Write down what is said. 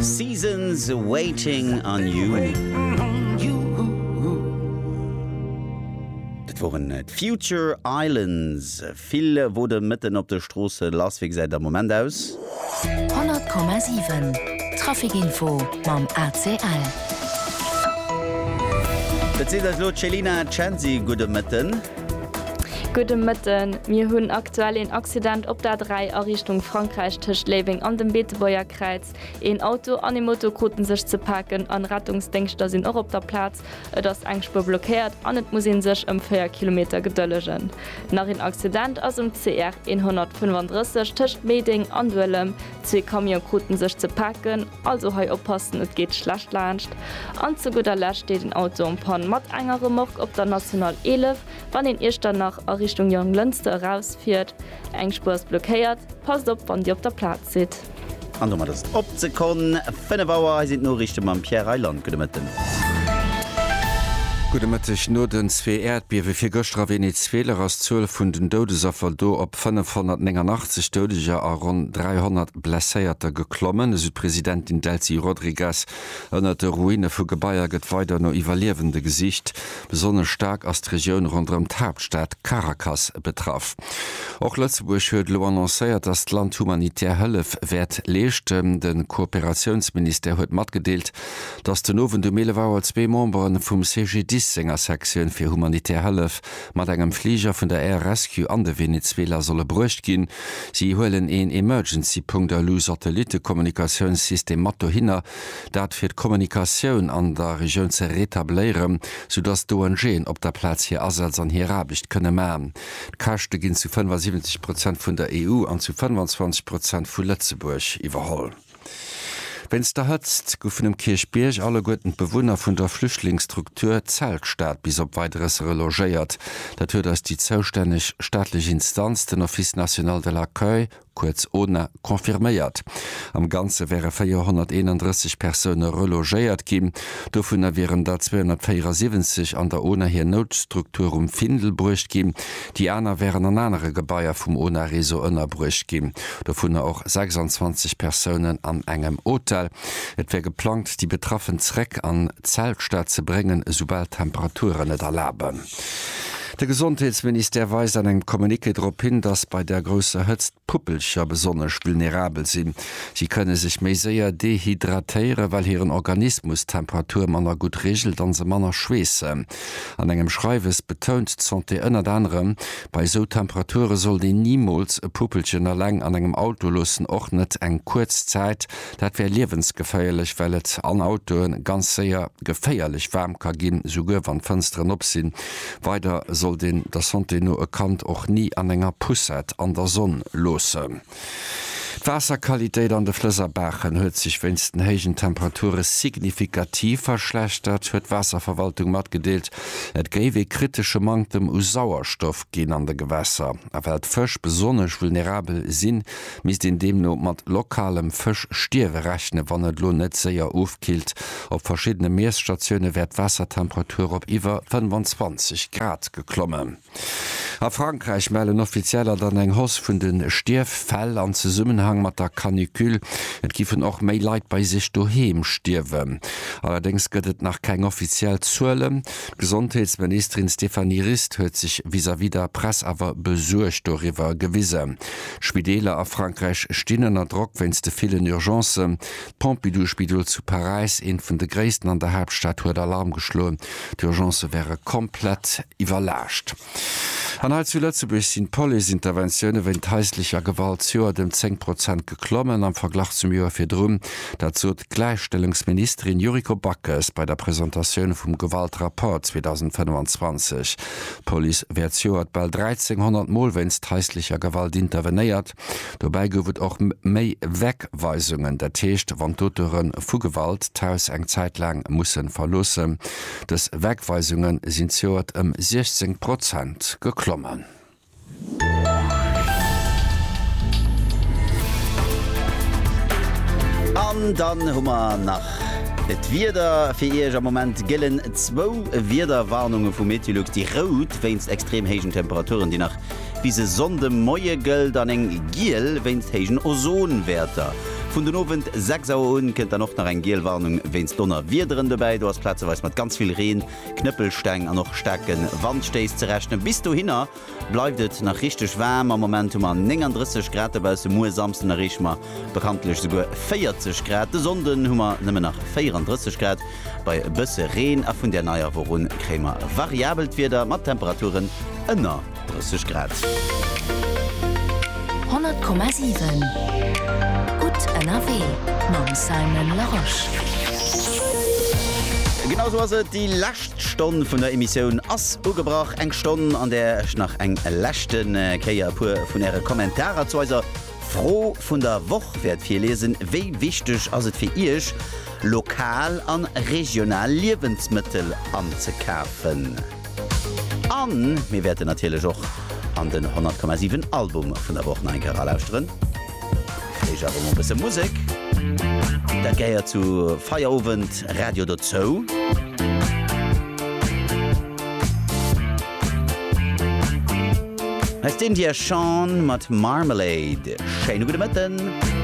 Seasons Waiting on You. Dat woren d'Future Islands. Vill wou de mëtten op de Stroosse lass. Wéi gesäit et am Moment aus? 100,7 Traficinfo mam ACL. Et seet eis elo d'Chelina Censi. Gudde Mëtten. Gudde Mëtten. Mir hunn aktuell een Accident op der 3 a Richtung Frankräich tëscht Léiweng an dem Beetebuerger Kräiz. Een Auto an ee Moto kruten sech ze paken an Rettungsdéngschter sinn och op der Plaz. Et ass eng Spuer blockéiert an et muss een sech ëm 4 Kilometer gedëllegen. Nach een Accident ass um CR 135 tëscht Méideng an Duelem. Zwee Camion kruten sech ze paken. Also hei oppassen, et geet schlecht laanscht. An zu gudder Lescht steet een Auto en panne mat enger Remorque op der National 11, wann een Iechternach a Richtung Jonglënster eraus fiert. Eng Spuer ass blockéiert, passt op wann dir op der Plaz sidd. An domat ass et op d'Sekonn 5 Auer. Hei sinn d'Noriichte mam Pierre Reyland. Gudde Mëtten. Gudde Mëtteg. No den zwee Äerdbiewe fir gëschter a Venezuela ass d'Zuel vun den Doudesaffer do op 589 Doudeger a ronn 300 Blesséierter geklommen. Esou d'Presidentin Delcy Rodrigues. Ënnert de Ruine vu Gebaier gëtt weider no Iwwerliewende gesicht. Besonnesch staark ass d'Regioun ronderëm d'Haaptstad Caracas betraff. Och Lëtzebuerg huet elo annoncéiert, datt d'Land humanitär Hëllef wäert leeschten. De Kooperatiounsministère huet matgedeelt, datt den Owend um 11 Auer zwee Membere vum CGDIS senger Sektioun fir humanitär Hëllef mat engem Fliger vun der Air Rescue an de Venezuela solle bruecht ginn. Si huelen een Emergency-Punkt elu, Satellittekommunikatiounssystem mat dohinner, dat fir d'Kommunikatioun an der Regioun ze retabléieren, sou datt d'ONGen op der Plaz hir Asätz an hir Aarbecht kënne maachen. D'Käschte ginn zu 75 Prozent vun der EU an zu 25 Prozent vu Lëtzebuerg iwwerholl. Wéinst der Hëtzt goufen um Kierchbierg alleguerten d'Bewunner vun der Flüchtlingsstruktur Zeltstad bis op Weideres relogéiert. Dat huet eis déi zoustänneg staatlech Instanz, den Office national de l'accueil, kuerz ona, confirméiert. Am Ganze wäre 431 Persoune relogéiert ginn. Dovunner wieren der 274 an der ona hir Noutstruktur um Findel bruecht ginn, Déi aner wären an anere Gebaier vum Ona-Réseau ënnerbruecht ginn, dovunner och 26 Persounen an engem Hotel. Et wär geplangt, déi Betraffen zeréck an d'Zeltstad ze bréngen, esoubal d'Temperaturen et erlaben. De Gesondheetsministère weist an engem Communiqué drop hin, datt bei der grousser Hëtzt d'Puppelcher besonnesch vulnerabel sinn. Si kënne sech méi séier dehydratéieren, well hiren Organismus d'Temperatur manner gutt reegelt a se manner schweessen. An engem Schreiwes betount d'Santé ënnert anerem, bei esou Temperature sollt een nimools e Puppelchen eleng an engem Auto loossen, och net eng kuerz Zäit. Dat wär liewensgeféierlech, well et an Autoe ganz séier geféierlech waarm ka ginn, souguer wann d'Fënsteren op sinn. Weider sollt een der Santé no e Kand och ni an enger Poussette an der Sonn loossen. D'Waasserqualitéit an de Flëss a Baachen huet sech wéinst den héijen Temperature signifikativ verschlechtert, huet d'Waasserverwaltung matgedeelt. Et géif ee kritesche Manktem u Sauerstoff ginn an de Gewässer, a well d'Fësch besonnesch vulnerabel sinn, misst een deemno mat lokalem Fëschstierwe rechnen, wann et elo net séier ofkillt. Op verschiddene Miesstatioune wär d'Waassertemperatur op iwwer 25 Grad geklommen. A Frankräich mellen Offizieller dann eng Hausse vun de Stierffäll an Zesummenhang mat der Canicule. Et giffen och méi Leit bei sech doheem stierwen. Allerdéngs gëtt et nach keng offiziell Zuelen. D'Gesondheetsministerin Stéphanie Rist huet sech vis-à-vis der Press awer besuergt doriwwer gewisen. D'Spideeler a Frankräich stinn ënner Drock wéinst de villen Urgencen. D'Pompidou-Spidol zu Paräis, eent vun de gréissten an der Haaptstad, huet Alarm geschloen, d'Urgencë wäre komplett iwwerlaascht. An hei zu Lëtzebuerg sinn d'Police-Interventioune wéint haislecher Gewalt zejoert ëm 10 Prozent geklommen am Verglach zum Joer virdrun. Dat sot d'Gläichstellungsministerin Yuriko Backes bei der Presentatioun vum Gewaltrapport 2025. D'Police wäert zejoert bal 1.300 Mol wéinst haislecher Gewalt intervenéiert. Dobäi gouf et och méi Wegweisungen, dat heescht wann d'Auteure vu Gewalt d'Haus eng Zäit laang musse verloossen. Dës Wegweisunge sinn zejoert ëm 16 Prozent geklommen. An dann hu mer nach d'Wieder fir Iech. Am Moment gëllen zwou Wiederwarnunge vu Meteolux, déi rout wéinst extrem héijen Temperaturen, déi nach Bis e Sonnde Moie gëllt an eng Giel wéinst héijen Ozonwäerter. Vun den Owend 6 Auer un kënnt dann och nach eng Giel Warnung wéinst Donnerwiederen dobäi. Do ass plazeweis mat ganz vill Reen, Knëppelsteng an och staarke Wandstéiss ze rechnen. Bis dohinner bleift et nach richteg waarm. Am Moment hu mer 39 Grad dobaussen, muer Samsden erreeche mer bekanntlech souguer 40 Grad. De Sonnde hu mer nëmmen nach 34 Grad. Bei e bësse Reen a vun der neier Woch un kréie mer variabelt Wieder mat Temperaturen ënner 30 Grad. 100,7 gutt ënnerwee mam Simon Larosche. Genau esou ass et, déi lescht Stonn vun der Emissioun ass ugebrach. Eng Stonn, an där ech nach eng leschte Kéier e puer vun äre Kommentarer zu eiser. Fro vun der Woch wäert virliesen, Wéi wichteg ass et fir Iech, lokal an regional Liewensmëttel anzekafen? A mir wäerten natierlech och an den 100,7 Album vun der Woch nach eng Kéier eralauschteren. Eréischt awer mol e bësse Musek. Dat gehéiert zu Feierowend Radio dozou. Hei stin dir schon mat Marmalade. Schéine gudde Mëtten.